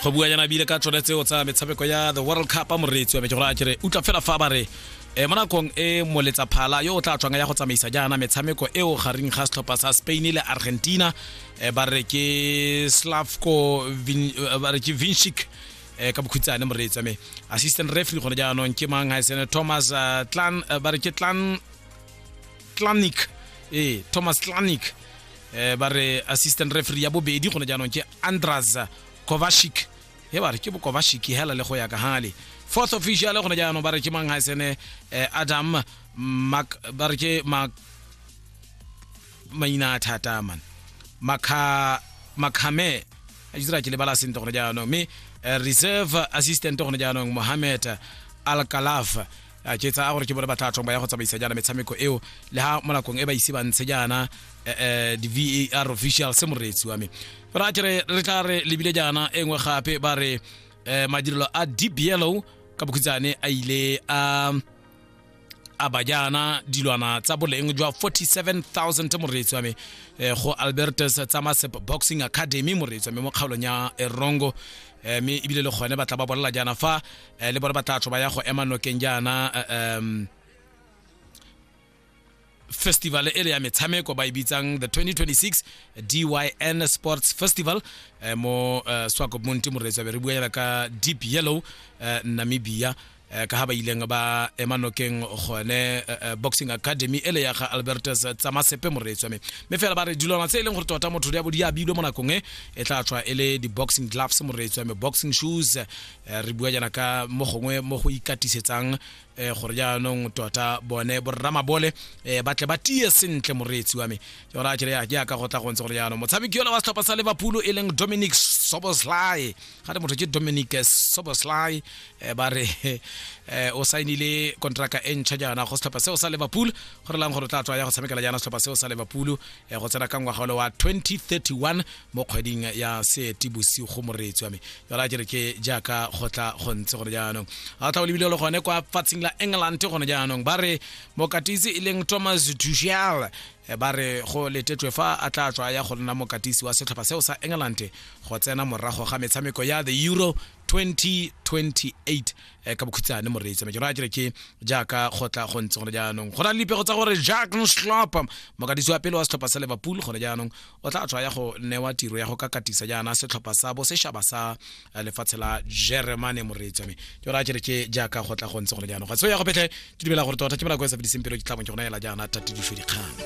go bua yana bile ka tsone tseo tsa metshameko ya the world cup moreetsi wa me ke gore a kere utla fela fa ba re e mo nakong e moletsa phala yo o tla tswang ya go tsamaisa jaana metshameko eo gareng ga setlhopha sa spain le argentina e ba re ke slavko ba re ke vinshik um ka bokhutsane moreetsi wa me assistant referee gone jaanong ke mang ga e sene thomas clan ba re ke clan Clanic ee Thomas Clanic eh ba re assistant referee ya bobedi gone jaanong ke Andras Kovacic he ba re ke Kovacic hela le go ya ka hale fourth official gone jaanong ba re ke mang ha sene eh, Adam Mac ba re ke Mac maina a thata man Makha Makhame a dira ke lebala sentle gone jaanong mme eh, reserve assistant gone jaanong Mohamed Al Kalaf a ke tsa gore ke bone ba tla thong ba ya go tsamaisa jaana metshameko eo le ha mo nakong e ba ise ba ntshe jaana eh, eh, di-var official se moreetsi wa me ra ke re re tla re lebile jaana e nngwe gape ba re eh, madirelo a deep yellow ka bokhutsane a ile a a ba jaana dilwana tsa boleng jwa 47000 moreetsi wa me eh, go albertus tsamasep boxing academy moreetsi wa me mo kgaolong ya erongo eh, mme ebile le gone ba tla ba bolela jaana fa eh, le bone ba tla tsho ba ya go ema nokeng jaana um festival e le ya metshameko ba e bitsang the 2026 dyn sports festival eh, mo uh, eh, swakopmonti moreetsa be re buela ka deep yellow uh, namibia Eh, ka ha ba ileng ba ema nokeng gone eh, eh, boxing academy e le ya ga albertus tsamasepe moreetswa me mme fela ba re dilwana tse e leng gore tota motho ya bodi a bilwe mo nakong e e tla tswa e le di-boxing gloves moreetswa me boxing shoes Eh, re bua jana ka mo gongwe mo go ikatisetsang eh, gore jaanong tota bone borramabole eh, ba tle ba tie sentle moreetsi wa me jona kere jaaka go tla go ntse gore jaanong motshameki yola wa setlhopha sa liverpool e leng dominic soboslai ga te motho ke dominic soboslai ba re o sainile kontraka e ntšha jaana go setlhopha seo sa liverpool go re lang gore o tla tswa ya go tshamekela jaana setlhopha seo sa liverpool go tsena ka ngwaga ole wa 2031 mo kgweding ya seetibosigo moreetsi wa me jala a kere ke jaaka go tla go ntse gone jaanong a tla o lebile le gone kwa fatsing la england gone jaanong ba re mokatisi e leng thomas dushal eh, ba re go letetšwe fa a tla tswa ya go nna mokatisi wa setlhopha seo sa england go tsena morago ga metshameko ya the euro 2028 um ka bokhutshane moreetsi me ke raya kere ke jaaka gotla go ntse gone jaanong go na le dipego tsa gore jack nslop mokadisi wa pele wa setlhopha sa liverpool gone jaanong o tla tswa ya go newa tiro ya go ka katisa jaana setlhopha sa bo seshaba sa eh, lefatshe la germane moreetsi wa me ke raya kere ke jaaka gotla go ntse gone jaanong ga se ya go petlhe ke dumela gore tota ke mela ko e sa fediseng pelo ke tlhabong ke gona ela jaana tatedišo dikgang